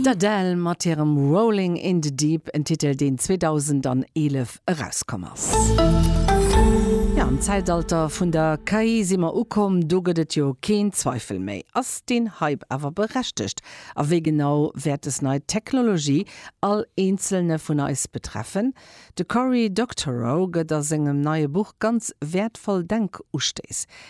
D'Adele mat hirem Rolling in the Deep, en Titel deen 2011 erauskomm ass. Jo, am Zäitalter vun der KI si mer ukomm, do gëtt et jo keen Zweifel méi. Ass deen Hype awer berechtegt? A wéi genau wäert des nei Technologie all eenzelne vun eis betreffen? De Cory Doctorow gëtt a sengem neie Buch ganz wäertvoll Denkustéiss.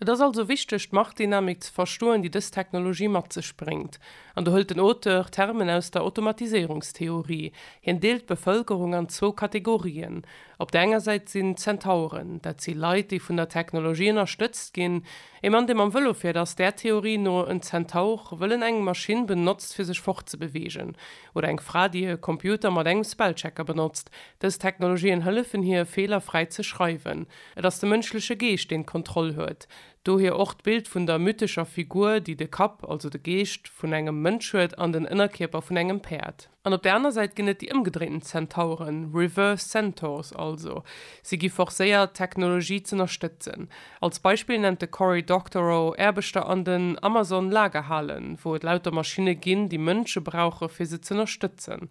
Et ass also wichteg, d'Marktdynamik ze verstoen, déi dës Technologie mat sech bréngt. An do hëlt den Auteur Termen aus der Automatiséierungstheorie. Hien deelt d'Bevëlkerung an zwou Kategorien. Op der enger Säit sinn d'Zentauren. Dat si Leit, déi vun der Technologie ënnerstëtzt ginn. Ee Mann, dee mam Vëlo fiert, ass där Theorie no en Zentaur, wëll en eng Maschinn benotzt, fir sech fortzebeweegen. Oder eng Fra, déi e Computer mat engem Spellchecker benotzt. Dës Technologien hëllefen hir, Feeler fräi ze schreiwen. Et ass de mënschleche Geescht, deen d'Kontroll huet. Dohier och d'Bild vun der mythescher Figur, déi de Kapp, also de Geescht, vun engem Mënsch huet an den Ënnerkierper vun engem Päerd. An op der aner Säit ginn et déi ëmgedréinten Zentauren, reverse centaurs also. Si gi forcéiert, d'Technologie z'ënnerstëtzen. Als Beispill nennt de Cory Doctorow Aarbechter an den Amazon-Lagerhalen, wou et lauter Maschinne ginn, déi Mënsche brauche fir se z'ënnerstëtzen.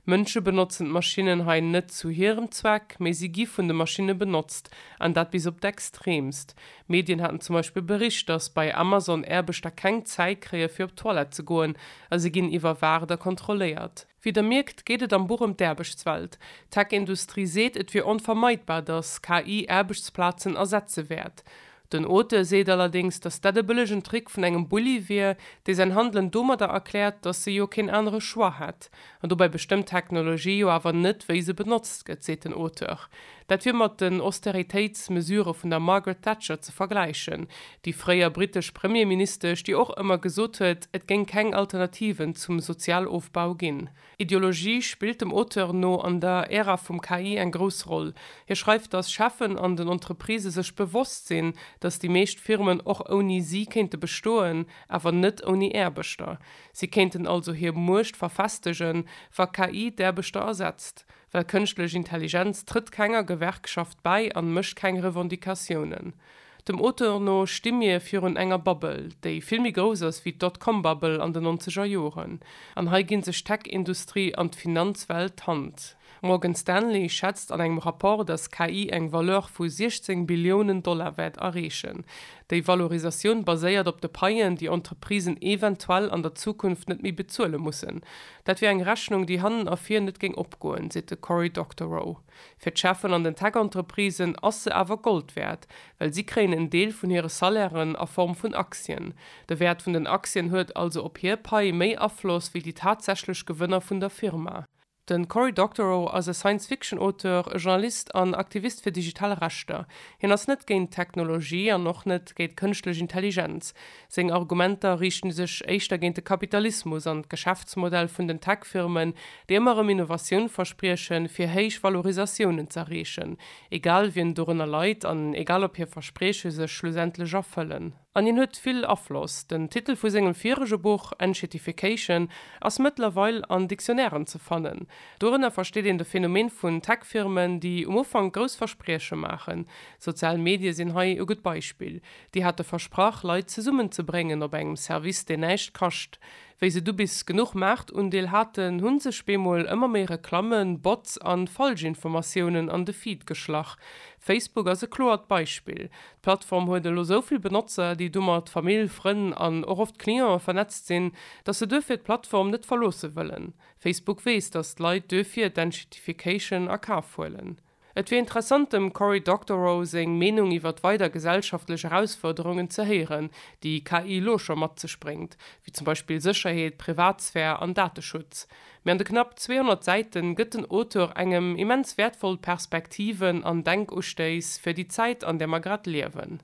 Mënsche benotzen d'Maschinnen hei net zu hirem Zweck, mee si gi vun de Maschinne benotzt, an dat bis op d'Extreemst. Medien haten zum Beispill bericht, datt bei Amazon Aarbechter keng Zäit kréie fir op d'Toilette ze goen, a si ginn iwwerwaacht a kontrolléiert. Wéi der mierkt, geet et am Buch ëm d'Aarbechtswelt. D'Tech-Industrie seet, et wier onvermeidbar, datt KI Aarbechtsplazen ersetze wäert. Den Auteur seet allerdéngs, datt dat e bëllegen Trick vun engem Bulli wier, dee säin Handelen domadder erkläert, datt se jo keen anere Choix hätt. An dobäi bestëmmt d'Technologie jo awer net, wéi se benotzt gëtt, seet den Auteur. Dat wier mat den Austeritéitsmesurë vun der Margaret Thatcher ze vergläichen, déi fréier britesch Premierministesch, déi och ëmmer gesot huet, et géing keng Alternativen zum Sozialofbau ginn. Ideologie spillt dem Auteur no an der Ära vum KI eng grouss Roll. Hie schreift, datt Cheffen an den Entreprisë sech bewosst sinn, datt déi meescht Firmen och ouni si kéinte bestoen, awer net ouni Aarbechter. Si kéinten also hir Muecht verfestegen, wa KI d'Aarbechter ersetzt. Well kënschtlech Intelligenz trëtt kenger Gewerkschaft bäi an mécht keng Revendicatiounen. Dem Auteur no sti mir virun enger Bubble, déi vill méi grouss ass wéi d'Dotcom-Bubble an de nonzeger Joren. An hei ginn sech d'Tech-Industrie an d'Finanzwelt d'Hand. Morgan Stanley schätzt an engem Rapport, datt KI eng Valeur vu 16 Billiounen Dollar wäert erreechen. Déi Valorisatioun baséiert op de Paien, déi Entreprisen eventuell an der Zukunft net méi bezuele mussen. Dat wier eng Rechnung, déi hannen a vir net géing opgoen, seet de Cory Doctorow. Fir d'Cheffen an den Tech-Entreprisen ass se awer Gold wäert, well si kréien en Deel vun hire Salairen a Form vun Aktien. De Wäert vun den Aktien huet also op hir Pai méi Afloss wéi déi tatsächlech Gewënner vun der Firma. De Cory Doctorow ass e Science-Fiction-Auteur, e Journalist an Aktivist fir digital Rechter. Hien ass net géint d'Technologie an och net géint kënschtlech Intelligenz. Seng Argumenter riichte sech éischter géint de Kapitalismus an d'Geschäftsmodell vun den Tech-Firmen, déi ëmmer erëm Innovatioun verspriechen, fir héich Valorisatiounen z'erreechen, egal wien dorënner leit an egal ob hir Versprieche sech schlussendlech erfëllen. An hien huet vill Afloss. Den Titel vu sengem virege Buch Enshetification ass mëttlerweil an Dictionnairen ze fannen. Dorënner versteet een de Phänomen vun Tech-Firmen, déi um Ufank grouss Versprieche maachen. Sozial Medie sinn hei e gutt Beispill. Déi hate versprach, Leit zesummenzebréngen op engem Service, deen näischt kascht. Wéi se du bis genuch Maartundeel haten, hu sech bemol ëmmer méi Reklammen, Bots an Falschinformatiounen an de Feed geschlach. Facebook ass e kloert Beispill. D'Plattform huet elo sou vill Benotzer, déi domat Famill, Frënn an och oft Clientë vernetzt sinn, dass se duerfir d'Plattform net verloosse wëllen. Facebook weess, dass d'Leit duerfir d'Enshittification a Kaf huelen. Et wier interessant dem Cory Doctorow seng Meenung iwwer weider gesellschaftlech Erausfuerderungen ze héieren, déi KI elo scho mat sech bréngt, wéi zum Beispill Sécherheet, Privatsphär an Dateschutz. Mee an de knapp 200 Säiten gëtt den Auteur engem immens wäertvoll Perspektiven an Denkustéiss fir déi Zäit an där mer grad liewen.